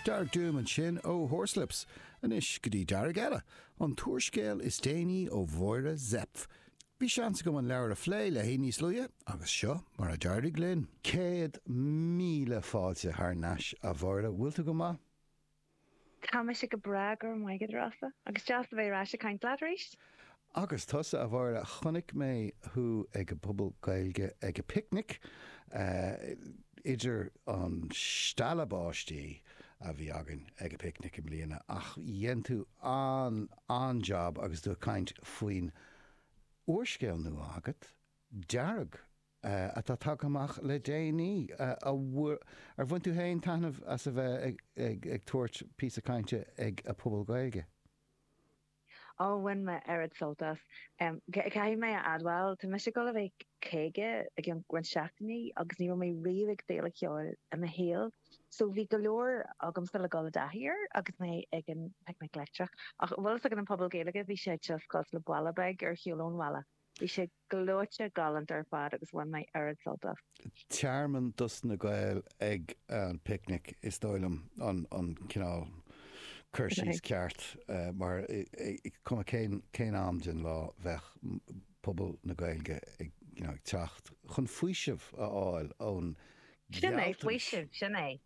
Dearg Doom ansin ó Horslips. Anois go dtí dearg eile, an t-úrscéal is déanaí ó Mháire Zepf. Bhí seans agam an leabhar a phlé léi níos luaithe agus seo mar a d'éirigh linn. Céad míle fáilte thar nais a Mháire, bhfuil tú go maith? Tá mise go breá, go raibh maith agat, a Rossa. Agus deas a bheith ar ais ag caint leat arís. Agus tusa, a Mháire, chonaic mé thú ag an bPuball Gaeilge ag an bPicnic, idir an stealladh báistí a bhí againn ag an bPicnic i mbliana, ach dhein tú an-an-jab agus tú ag caint faoin úrscéal nua agat, Dearg. atá tagtha amach le déanaí. Ar bhain tú féin taitneamh as a bheith ag tabhairt píosa cainte ag an bPuball Gaeilge? Ó, bhain mé oiread sult as. Caithfidh mé a admháil, tá mise ag dul a bheith caoga i gceann roinnt seachtainí agus ní raibh mé riamh ag féile cheoil i mo shaol so bhí go leor agamsa le dul i dtaithí air agus mé ag an bPicnic Leictreach. Ach, bhfuil fhios agat, an Puball Gaeilge, bhí sé cosúil le baile beag ar shiúl ón bhaile. Bhí sé. Gleoite, galánta ar fad agus bhain mé oiread sult as. Tearmann dos na Gaeil ag an bPicnic is dóigh liom an cineál cur síos ceart mar cuma cén am den lá bheadh pobal na Gaeilge ag teacht chun faoiseamh a fháil ón ngealtachas. Sin é, faoiseamh, sin é!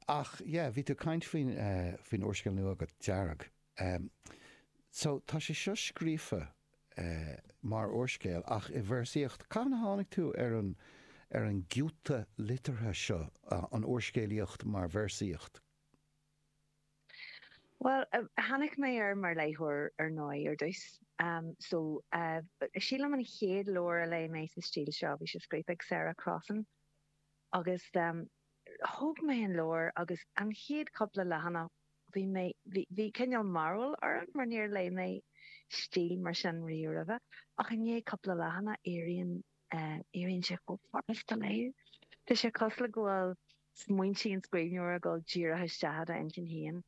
Ach yeah, bhí tú ag caint faoin úrscéal nua agat, Dearg. Ehm. So, tá sé seo scríofa, eh, mar úrscéal ach i véarsaíocht. Cathain a tháinig tú ar an, ar an gciúta liteartha seo, an úrscéalaíocht mar véarsaíocht? Bhuel, tháinig mé air mar léitheoir ar ndóigh, ar dtús. Ehm, so, eh, sílim an chéad leabhar a léigh mé sa stíl seo, bhí sé scríofa ag Sarah Crossan agus, eh, Thóg mé an leabhar agus an chéad chúpla leathanach bhí mé, bhí cineál mearbhall orm mar níor léigh mé stíl mar sin riamh roimhe ach i ndiaidh cúpla leathanach éiríonn, éiríonn sé chomh furasta a léamh. Tá sé cosúil le go bhfuil smaointe an scríbhneora ag dul díreach isteach i d'inchinn féin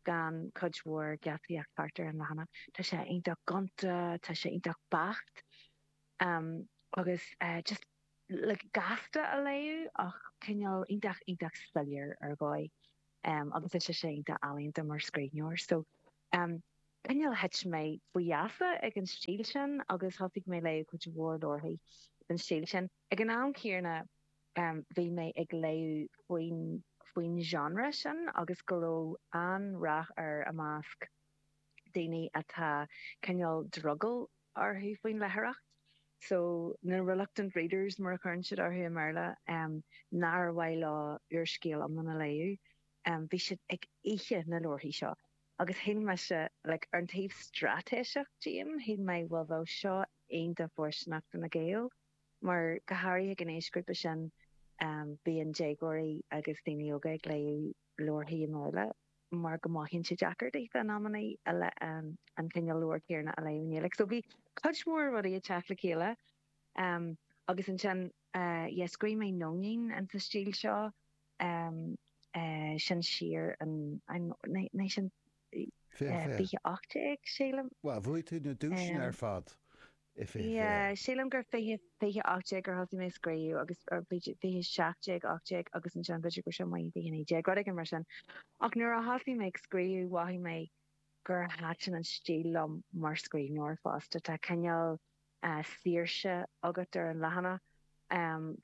gan cuid mhór geataíocht thart ar an leathanach. Tá sé iontach gonta, tá sé iontach beacht agus just. le gasta a léamh ach cineál iontach, iontach soiléir ar dhóigh agus tá sé iontach ealaíonta mar scríbhneoir. So cineál thit mé faoi gheasa ag an stíl sin agus thosaigh mé ag léamh cuid mhór leabharthaí den stíl sin. Ag an am céanna bhí mé ag léamh faoin faoin genre sin agus go raibh an-ráchairt air i measc. daoine atá cineál drogall orthu faoin léitheoireacht so na reluctant readers mar a chuireann siad orthu i mBéarla nár mhaith leo úrscéal iomlán a léamh bhí siad ag ithe na leabharthaí seo agus shíl mise like ar an taobh straitéiseach díom shíl mé bhuel bheadh seo iontach fóirsteanach do na Gaeil mar go háirithe ag an aoisghrúpa sin bíonn déagóirí agus daoine óga ag léamh Leabharthaí i mBéarla mar go mothaíonn sé deacair daofa in amanna an cineál leabhar céanna a léamh i nGaeilge. So bhí cuid mhór rudaí ag teacht le chéile agus ansin yeah scríobh mé Nóinín insa stíl seo, sin siar in, I'm not, 20 18 sílim. Bhuel, bhuaigh tú na duaiseanna ar fad i 20 20. Yeah, sílim gur 20, 20, 18 gur thosaigh mé ag scríobh agus, or bhí sé 20 17, 18 agus ansin b'fhéidir gur seo mo 19 féin, rud éigin mar sin. Ach nuair a thosaigh mé ag scríobh mhothaigh mé gur thaitin an stíl liom mar scríbhneoir fosta. Tá cineál saoirse agat ar an leathanach,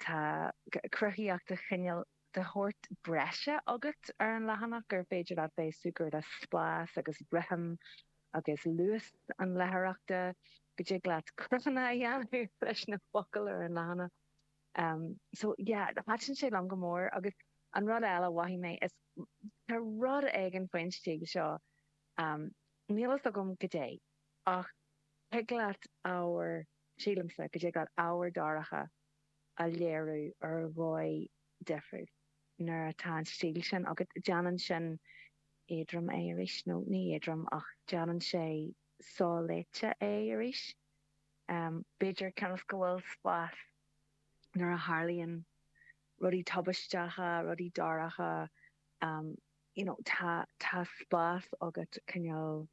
tá cruthaíocht cineál de shórt breise agat ar an leathanach gur féidir leat bheith ag súgradh le spás agus rithim agus luas an léitheoireachta, go dtig leat cruthanna a dhéanamh leis na focail ar an leathanach. So yeah, thaitin sé liom go mór agus an rud eile a mhothaigh mé, is tá rud éigin faoin stíl seo, níl fhios agam goidé ach tig leat ábhar, sílimse, go dtig leat ábhar dorcha, a léiriú ar dhóigh difriúil nuair atá an stíl sin agat. Déanann sin éadrom é arís, nó ní éadrom ach déanann sé so-léite é arís, b'fhéidir, cionn is go bhfuil spás nuair a tharlaíonn rudaí tubaisteacha, rudaí dorcha, you know, tá spás agat cineál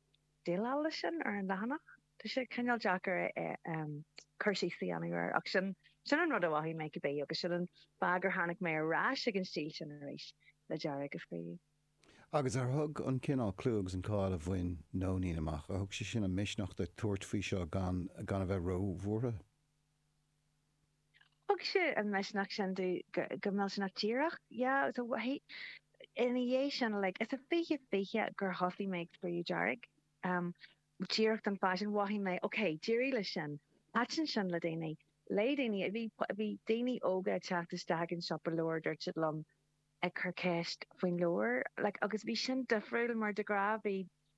déileáil leis sin ar an leathanach. Tá sé cineál deacair cur síos a dhéanamh air ach sin sin an rud a mhothaigh mé cibé agus sin an fáth gur tháinig mé ar ais ag an stíl sin arís le Dearg a scríobh. Agus ar thug an cineál clú agus an cáil a bhain Nóinín amach, ar thug sé sin an misneach duit tabhairt faoi seo gan gan a bheith róbhuartha? Thug sé an misneach sin domh go millteanach díreach. Yeah, so, ina dhiaidh sin like is a fiche fiche gur thosaigh mé ag scríobh Dearg. Díreach don fáth sin, mhothaigh mé ok, d'éirigh le sin, thaitin sin le daoine, léigh daoine, bhí, bhí daoine óga ag teacht isteach ag an siopa leabhar, dúirt siad liom, ag cur ceist faoin leabhar like agus bhí sin difriúil mar de ghnáth bhí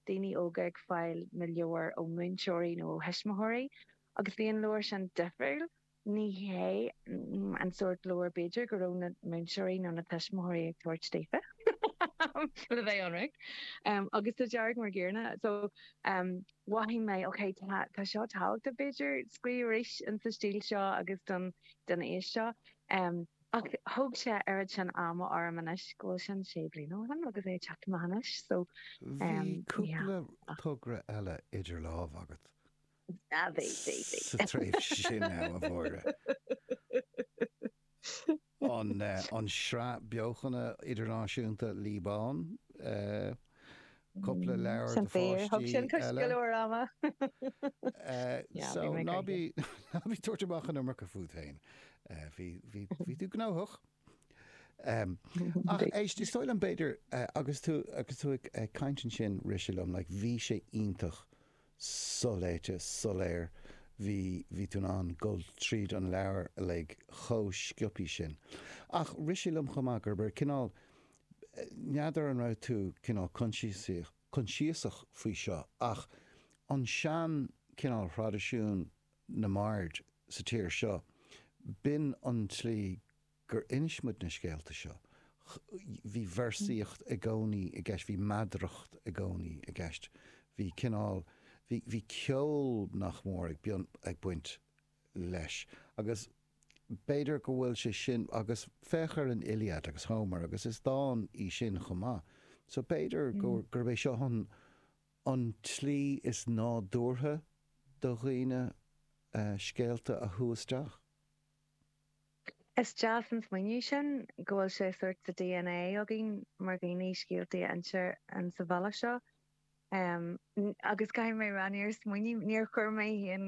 daoine óga ag fáil na leabhar ó múinteoirí nó ó thuismitheoirí agus bhí an leabhar sin difriúil ní hé an sórt leabhar b'fhéidir go raibh na múinteoirí nó na tuismitheoirí ag tabhairt daofa le bheith ionraic em agus tá dearg mar Dheora so em mhothaigh mé ok tá tá seo tábhachtach b'fhéidir scríobh arís in sa stíl seo agus don don aois seo em Ach thóg sé oiread sin ama orm anois go bhfuil sin sé bliana ó shin agus é ag teacht amach anois so Bhí em yeah cúpla togra eile idir lámh agat sa tréimhse sin, a Mháire. An an sraith beochana idirnáisiúnta Lí Ban. cupla leabhar do pháistí eile. So ná bí ag tabhairt amach an iomarca fút féin. Bhí tú gnóthach. Ach éist, is dóigh liom b'fhéidir agus tú ag caint ansin rith sé liom, bhí sé iontach soléite, soiléir, bhí tú in ann dul tríd an leabhar uilig chomh sciobthaí sin. Ach rith sé liom chomh maith gurb é an cineál N'fheadar an raibh tú cineál coinsiasach faoi seo ach ansin cineál thraidisiún na mbard sa tír seo, b'in an tslí gur inis muid na scéalta seo. Bhí véarsaíocht i gcónaí i gceist, bhí meadaracht i gcónaí i gceist, bhí cineál, bhí ceol nach mór ag baint leis. Agus b'fhéidir go bhfuil sé sin, agus féach ar an Iliad agus Homer agus is dán í sin chomh maith. So b'fhéidir gurb é seo an tslí is nádúrtha do dhaoine scéalta a shú isteach. Is deas an smaoineamh é sin, go bhfuil sé sórt sa dna againn mar dhaoine scéaltaí a insean sa bhealach seo. Agus caithfidh mé a rá, níor smaoinigh, níor chuir mé féin,